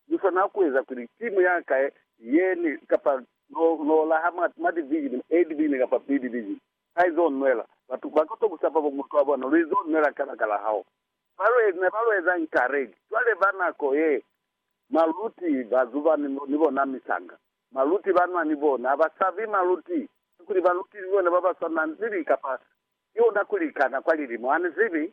Lu swana ku eza kuli simu ya ka ye ne kapa lo, lo laha mwa smart vision e libili kapa pili libi, ha izo nwela. Batu ba koto ku sapa bo mutu wa bona, lu izo nwela kabakala hao. Ba lu, ne ba lu eza encourage. Cwale ba nako ye, maluti ba zuba ni, ni bona misanga. Maluti ba nwa ni bona. Ha ba sabi maluti. Kakuli maluti ni bona ba ba swana, ni li kapa, ki ona ku likana kwa lilimo. Ha ni zibi.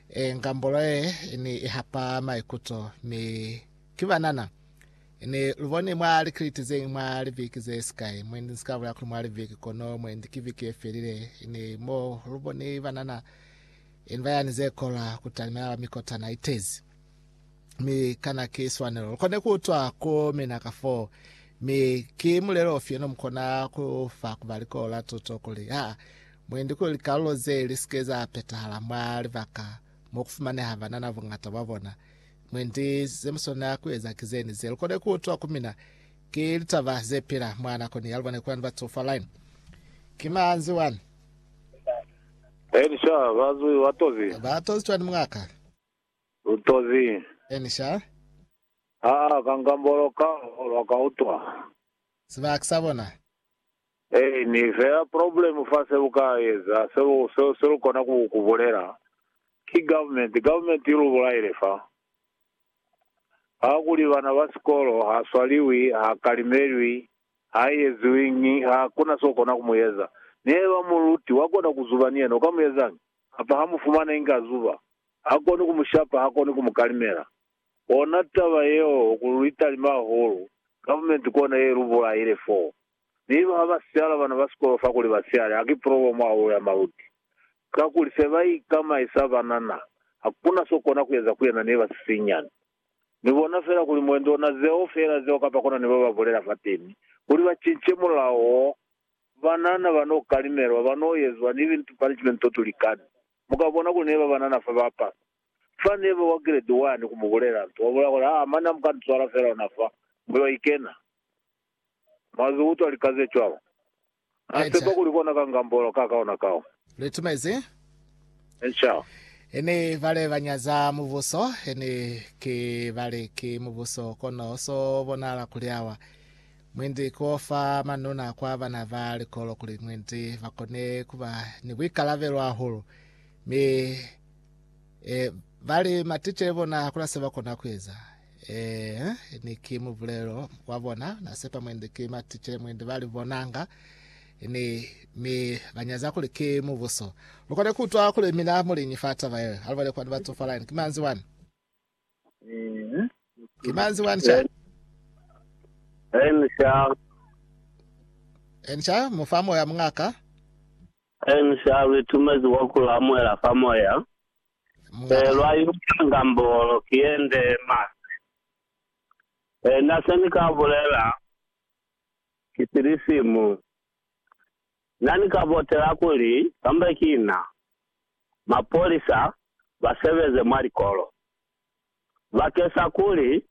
E, ngambulo ye ni ihapa maikuto, mi ki banana. Ni luboni mwa likiliti zeñwi mwa liviki ze sikai, mwendi nsika bulela kuli mwa liviki, kono mwendi ki viki ye felile, ni mo luboni banana ni bayani ze kola kutalimela lwa mikotana itezi. mi kana ki swanelo lukone kuutwa ku mina ka foo. Mi ki mulelo ufi ono mukona kufa kuba likolo la tuto kuli, Ha mwendi kuli likalulo ze lisike za petahala mwa libaka mo kufumaneha banana bungata bwa bona? Mwendi zemuswanela kueza ki zeni ze lukone kuutwa ku mina? Ki litaba zepila mwa nakoni ya lubone kulani batu fa line. Ki manzwi wani. Elisha, bazwi, watozi. Batozi cwani mungaka? Lu tozi. Eni sha. Ha a ka ngambolo ka ho lwa ka utwa. Sibaka sa bona. Eni fela problem fa se lu ka eza, se lu, se, se lu kona ku, ku bulela, ki government. Government i lu bulaile fa. Ha kuli bana ba sikolo, ha swaliwi, ha kalimelwi, ha eziwiñi, ha kuna so kona ku mu eza. Ni heba muluti wa kona ku zuba ni yena, u ka mu ezañi? Kapa ha mu fumana inge a zuba. Ha koni ku mu shapa, ha koni ku mu kalimela. Kona taba yeo ku li talima hahulu, government kona ye lu bulaile foo. Ni ba ha ba siala bana ba sikolo fa kuli ba siale, ha ki problem hahulu ya maluti. Kakuli se ba ikamaisa banana, ha kuna so kona ku eza ku yena ni ba sisinyani. Ni bona fela kuli mwendi ona zeo fela zeo kapa kona ni ba ba bulela fateni, kuli ba cince mulao wo, banana ba no kalimelwa, ba no yezwa ni lintu punishment to tu likani. Mu ka bona kuli ne ba banana fa ba pasa. Fa ne ba wa Giredi Wani ku mu bulela nto, wa bulela kuli, Haa, mane ha mu ka ni swala fela ona fa, mu yo ikena. Mwa zi utwa lika ze cwalo. Na sepa kuli kona ka ngambolo ka ka ona kao. Lu itumezi? Inca. He ne ba le ba nyaza Mubuso, he ne ke ba le ki Mubuso, kono so bonahala kuli awa. Mwendi ku fa manuna kwa bana ba likolo kuli mwendi ba kone ku ba ni buikalabelo hahulu, mi e, ba li maticele bona hakuna se ba kona ku eza. E, ni ki mubulelo wa bona, na sepa mwendi ki maticele mwendi ba li bonanga, ni mi ba nyaza kuli ki mubuso. Lu kone ku utwa kuli mina muliñi fa taba yeo, alubele kwani ba tsofala, ki manzi wani? Ki mañi nzi wani ca? Enca. Enca mu fa moya muñaka. Enca lu itumezi kwa ku lamuela fa moya. Muñaka. Ee, lwa iutela nga mbolo, ki yende masi. Ee, na se ni ka bulela, ki silisimu. Na ni ka botela kuli kamba ki na, mapolisa ba sebeze mwa likolo bakesa kuli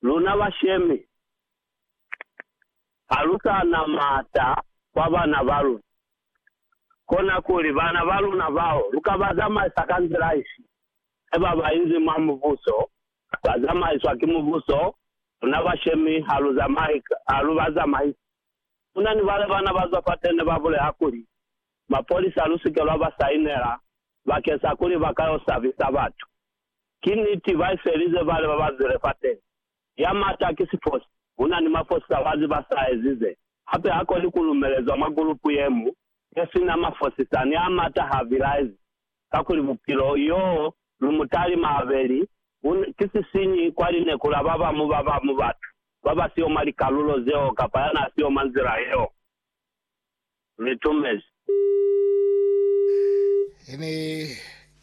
luna bashemi ha lu sa na maata kwa bana ba luna, kona kuli bana ba luna bao lu ka ba zamaisa ka nzila ifi? He ba ba inzi mwa Mubuso ba zamaiswa ki Mubuso, luna bashemi ha lu ba zamaisi. Ku na ni bale bana ba zwa fateni ba bulela kuli, Mapolisa lu si ke lwa ba sainela bakeng sa kuli ba ka yo sabisa batu. Ki niti, ba ifelize bale ba ba zwile fateni. Ya mata ki sifosi. Ku na ni mafosi sa bazi ba sa ezize. Hape ha koni ku lumelezwa mwa gulupu ye mu ne si na mafosisani a mata ha vilaezi, kakuli bupilo yo lu mutali maabeli bu ki sisinyi kwa lineku la ba bamu ba bamu batu ba ba si yo mwa likalulo zeo kapa ya n'a si yo mwa nzila yeo. Litumezi. Ini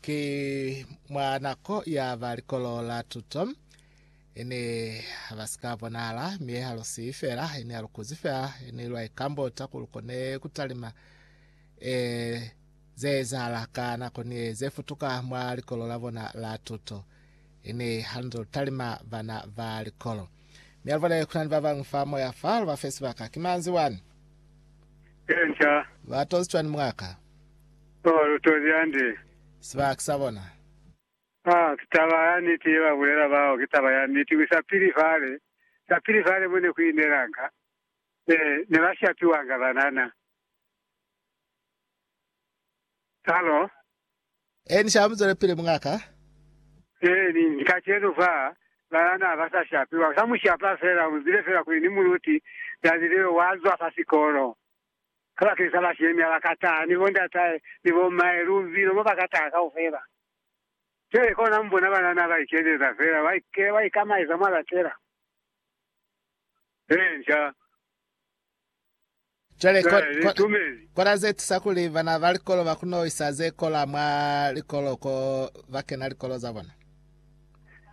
ki mwa nako ya ba Likolo la Tuto Ene ba si ka bonahala, mi ha lu siyi fela, ene ha lu kuzi fela, ene lwa ikambota ku lu kone ku talima e ze ezahala ka nako ni e ze futuka mwa likolo la bona la tuto. Ene ha lu nze lu talima bana ba likolo. Mi ha lu bone ku na ni ba bañwi fa moya fa, lu ba fe sibaka. Ki manzi wani. Ye nca. Ba tozi cwani mwaka? Oh, lu tozi hande. Sibaka sa bona. Ha ki taba ya niti ye ba bulela bao, ki taba ya niti. Ki sa pili fale, sa pili fale mo ne ku inelanga, ne, ne ba shapiwanga banana. Halo? Eeni, sha mu zwelepili, mungaka. Eeni, ni kacenu fa, banana ha ba sa shapiwa. U sa mu shapa fela, u zile fela kuli ni muluti, na zili yo wa zwa fa sikolo. Kabakeñisa bashemi ha ba ka taha, ni bondatahe, ni bommahe, lubilo mo ba ka taha kaufela. Cwale kona mubona banana ba ikezeza fela, ba ikela, ba ikamaiza mwa latela. He, nca. Cwale, ko, Cwale, ko, litumezi. kona ze tusa kuli bana ba likolo ba kono isa ze kola mwa likolo ko ba kena likolo za bona.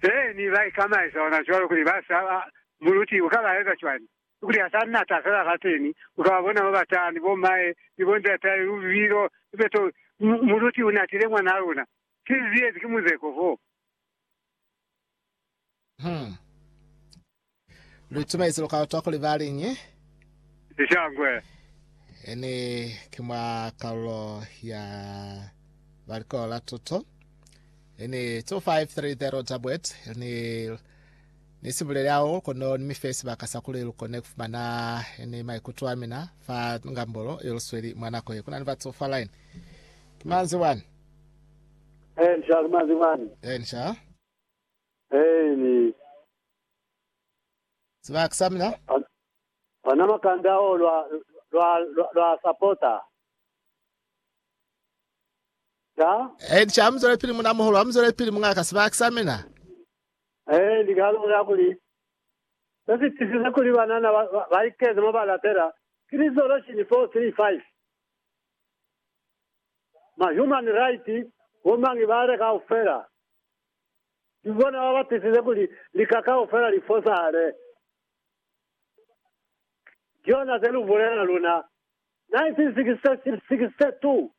He, ni ba ikamaiza ona cwalo kuli ba sa, muluti uka ba eza cwani? Kuli ha sa nata fela kateni, u ka ba bona ba batani, bo m'ae ni bo nz'atae, lubilo, lipeto. M, muluti u natile mwanaa luna. Ki ze ziyezi ki muzeko foo. Hmm. Lu itumelezi lukalo twa kuli ba liñi? Lishangwe. Ene ki mwa kalulo ya ba likolo la tuto. Ene 2530 Tabwet, ni. Ni si buleli hao, kono ni mi fe sibaka sa kuli lu kone ku fumana ni maikuto a mina fa ngambolo ye lu sweli mwa nako ye. Ku na ni batu fa line. Ki manzwi wani. Ee, ni sha. Ki manzwi wani. Ee, ni sha. Ee, ni. Sibaka sa mina. Ona makambi ao lwa, lwa, lwa, lwa sapota. Sha? Ee, ni sha. Amuzwelepili, munamuhulu. Amuzwelepili, muñaka. Sibaka sa mina. Ee, ni ka lubona kuli se si tisize kuli banana ba ikeze mo ba lapela ki Resolution 435. Ma human right bo mañi ba le kaufela, ki bona ba ba tisize kuli lika kaufela li fosahale. Ki yona se lu bulela luna. 1962,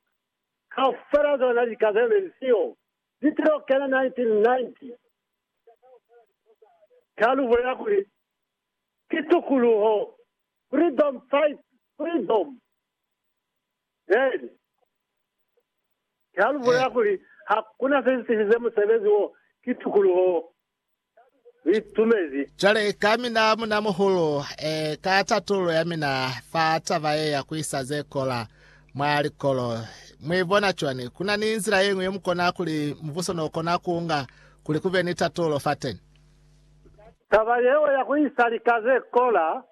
kaufela zona lika ze ne li siyo, Litelo kena 1990 ka lubo ya kuli, Ki Tukuluho, Freedom Fight Freedom, then ka lubo ya kuli, Hakuna se si sifize musebezi wo ki tukuluho Liitumezi. Cwale ka mina munamuhulu, e, ka tatululo ya mina fa taba ye ya kuisa ze kola mwa likolo, mwi bona cwani? Kuna ni nzila yeñwi ye mukona kuli mubuso no kona kuunga kuli kube ni tatululo fateni? Taba yeo ya kuisa lika ze kola,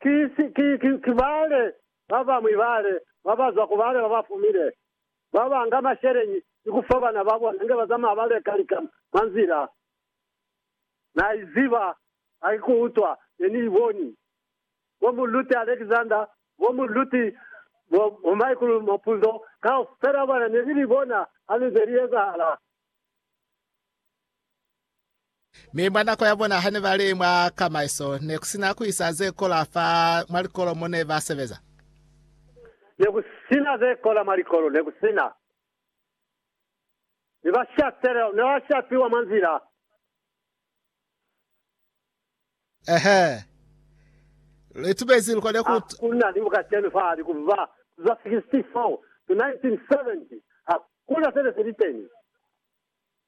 ki, ki, ki, ki bale babamwi bale babazwa ku bale babafumile. Ba banga masheleñi ni ku fa bana ba bona inge ba zamaya ba leka lika mwa nzila. Na i ziba, ha ki ku utwa, ne ni i boni. Bo Mulluti Alexander, bo Mulluti bo, bo Michael Mapunzo, kaufela bona ne ni li bona ha li nze li ezahala. Mi mwa nako ya bona hane ba li mwa kamaiso, ne ku si na ku isa ze kola fa mwa likolo mo ne ba sebeza. Ne ku si na ze kola mwa likolo, ne ku si na. Mi ba shapelela, ne ba shapiwa mwa nzila. Ehe. Lu itumezi lu kone ku. Ha ku na ni kacenu fahali ku ba za 64 to 1970, ha ku na se ne si li teni.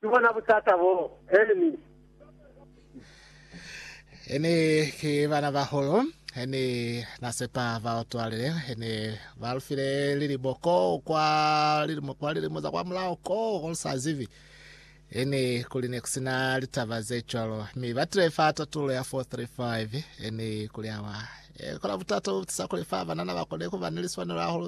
Ki bona butata boo, Ernie. Ne ki banabahulu. Ne na sepa ba utwalile. Ne ba lu file lilimo koo kwa lilimo, kwa lilimo za kwamulaho koo, ko lu sa zibi. Ne kuli ne ku si na litaba ze cwalo. Mi ba tile fa tatulo ya 435. Ne kuli, Awa, e kola butata bo bu tisa kuli fa banana ba kone ku ba ni liswanelo hahulu ze